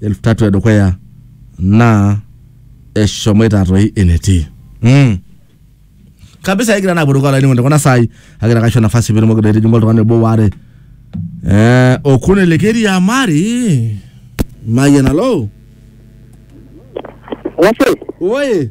elfu tatu edukuya naa eshomoita toi enetii mm. kabisa egira naa apuruko olainining'oni tekuna saai agira kaisho nafasi piitumoki doi aitijing'u oltung'ani obo waare eh, okuni likiriamari mayian alo Wase, oye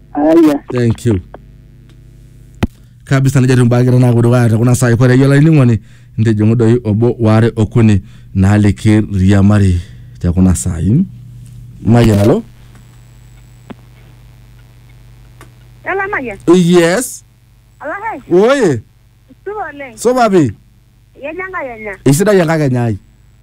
Haya. thank you kabisa nejo timbakita naaku dukuya te kuna saai kore yiolo ainining'oni ntijing'u doi obo waare okuni naaliki riamari te kuna saai mayian alo Yala Mayian. yes Ala hai. oye Supa oleng. supa pi Yenya Enkai enya. eisidai enkakenya ai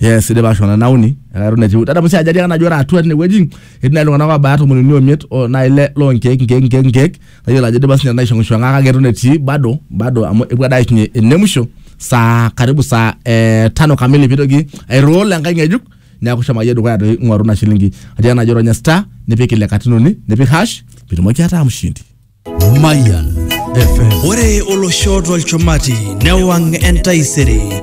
yes idipa ashona nauni ekaton etiu tata musi ajali akana ajo ore atua tinewueji etii nai iltung'anak obaya tomon uni omiet o nai ile lonkeek nkeek nkeek nkeek nayiolo ajo idipa sinye naishong'ishong'a kake eton etii bado bado amu epuo ade aishunye ene musho saa karibu saa eh, tano kamili pitoki airoll enkae ng'ejuk neeku shomo akeyie dukuya toi ing'oru ina shilingi atiaka najo ronya star nipik ile katitin uni nipik hash pitumoki ataa mshindi Mayan FM. Ore olosho tolchumati newang' entaisere